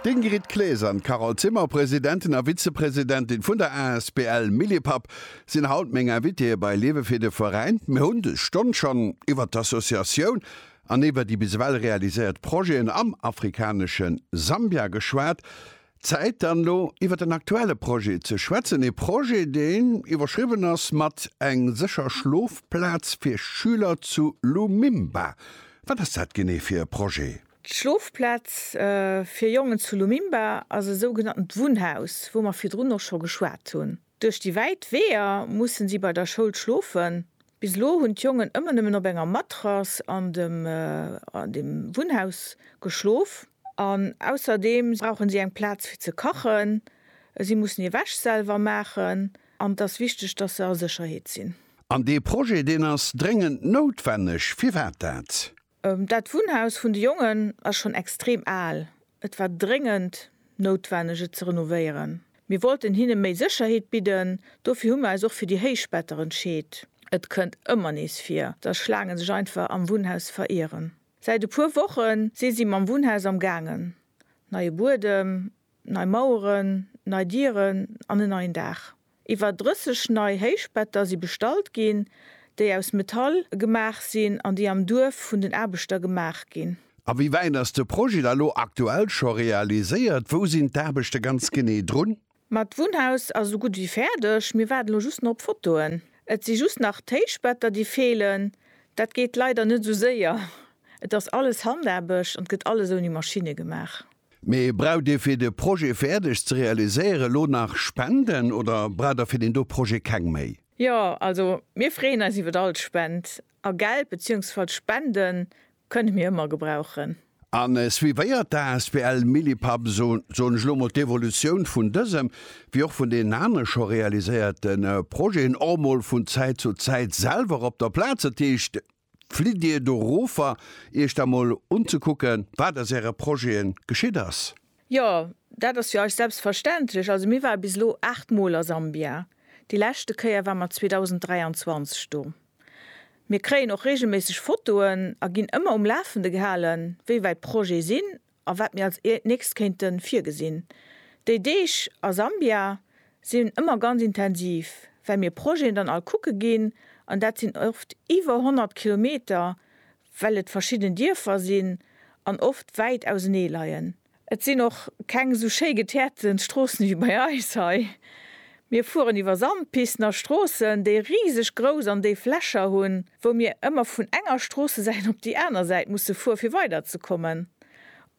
D'Ingrid Claes an d'Carole Zimmer, Presidentin a Vizepresidentin vun der asbl Millipap, sinn haut meng Invitéeë bei Liewe fir de Veräin. Mir hunn dës Stonn schonn iwwert d'Associatioun an iwwer déi bis ewell realiséiert Projeten am afrikanesche Sambia geschwat. Zäit dann elo iwwert en aktuelle Projet ze schwätzen, ee Projet deen iwwerschriwwen ass mat Eng sécher Schlofplaz fir Schüler zu Lumimba. Wat ass dat genee fir e Projet? D'Schlofplaz fir Jongen zu Lumimba ass e sougenatent Wunnhaus, wou mer virdrun och scho geschwat hunn. Duerch déi wäit Weeër mussen si bei der Schoul schlofen. Bis elo hunn d'Jongen ëmmer nëmmen op enger Matrass an dem Wunnhaus geschlof. An ausserdeem brauchen si eng Plaz fir ze kachen, si mussen hir Wäsch selwer maachen an et ass wichteg, dass se a Sécherheet sinn. An dee Projet, deen ass dréngend noutwenneg. Firwat dat? Dat Wunnhaus vun de Jongen ass schonn extrem al. Et war dréngend noutwenneg, et ze renovéieren. Mir wollten hinne méi Sécherheet bidden, dofir hu mir eis och fir déi héich Better entscheet. Et kënnt ëmmer nees vir, dass Schlaange sech einfach am Wunnhaus verieren. Säit e puer Woche si si mam Wunnhaus am gaangen, neie Buedem, nei Maueren, nei Dieren an en neien Daach. Iwwer 30 nei Héichbetter si bestallt ginn, déi aus Metall gemaach sinn an déi am Duerf vun den Aarbechter gemaach ginn. A wéi wäit ass de Projet da lo aktuell scho realiséiert? Wou sinn d'Aarbechte ganz genee drun? Ma d'Wunnhaus ass esou gutt ewéi fäerdeg. Mir waarden elo just nach op Fotoen. Et si just nach d'Héichbetter déi feelen. Dat geet leider net esou séier. Et ass alles Handaarbecht an et gëtt alles ouni Maschinne gemaach. Mee braucht Dir fir de Projet fäerdeg ze realiséieren elo nach Spenden oder braucht Der fir deen do Projet keng méi? Jo, also mir freeën eis iwwert all Spend, a Geld beziehungsfalls Spenden kënne mir ëmmer gebrauchen. A suivéiert d'asbl Millipap eso soen ech elo mol d'Evolutioun vun dësem wéi och vun deenen anere scho realiséierte Projeten och mol vun Zäit zu Zäit selwer op der Plaz, dat heescht, Flitt Dir dorover, Iech da mol unzekucken, wat aus Äre Projete geschitt ass? Jo, dat ass fir eis selbstverständlech. Also mir ware bis elo aacht Mol a Sambia. Déi leschte Kéier ware mer 2023 do. Mir kréien och reegelméisseg Fotoen a ginn ëmmer um Lafende gehalen, wéi wäit d'Projete sinn a wat mir als nächst kéinte virgesinn. Déi Deeg a Sambia sinn ëmmer ganz intensiv, well mir Projeten dann all kucke ginn, an dat sinn oft iwwer 100 Kilometer, well et verschidden Dierfer sinn an oft wäit ausenee leien. Et sinn och keng esou schéi geteerte Stroossen ewéi bei eis hei. Mir fueren iwwer Sandpisten a Stroossen, déi riseg grouss an déif Lächer hunn, wou mir ëmmer vun enger Stroossesäit op déi aner Säit musse fueren, fir weiderzekommen.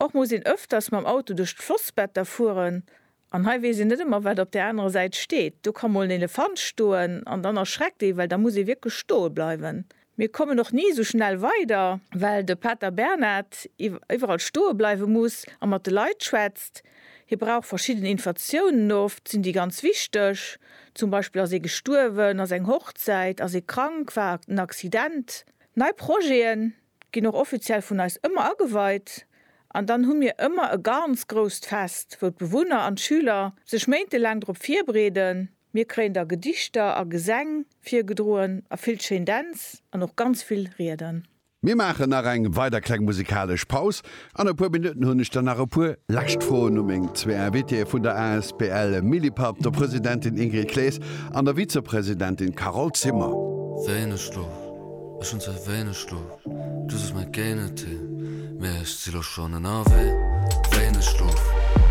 Och muss een ëfters mam Auto duerch d'Flossbetter fueren, an hei weess een net ëmmer, wat op där anerer Säit steet. Do ka mol en Elefant stoen, an dann erschreckt ee, well da muss ee wierklech stoe bleiwen, Mir kommen och ni esou schnell weider, well de Pater Bernhard iwwerall stoe bleiwe muss a mat de Leit schwätzt. Hie brauch verschidden Infatiounen, oft sinn déi ganz wichteg, zum Beispill ass ee gestuerwen, ass eng Hochzäit, ass ee krank, war en Accident. Nei Projete ginn och offiziell vun eis ëmmer ageweit an dann hu mir ëmmer e ganz grousst Fest, wou d'Bewunner an d'Schüler sech méintelaang drop virbereeden. Mir kréien da Gedichter a Gesäng virgedroen a vill schéin Dänz an och ganz vill Rieden. Mir maachen nach eng weider kleng musikalesch Paus. An e puer Minutten hunn ech dann nach e puer lescht Froen u meng zwee Invitéeë vun der asbl Millipapp, der Presidentin Ingrid Klees an der Vizepresidentin Carole Zimmer. Wéineg Schlof, ech hunn zwar wéineg Schlof, dës ass mäi Géigenteil, mee ech si lo schonn ënnerwee. Wéineg Schlof.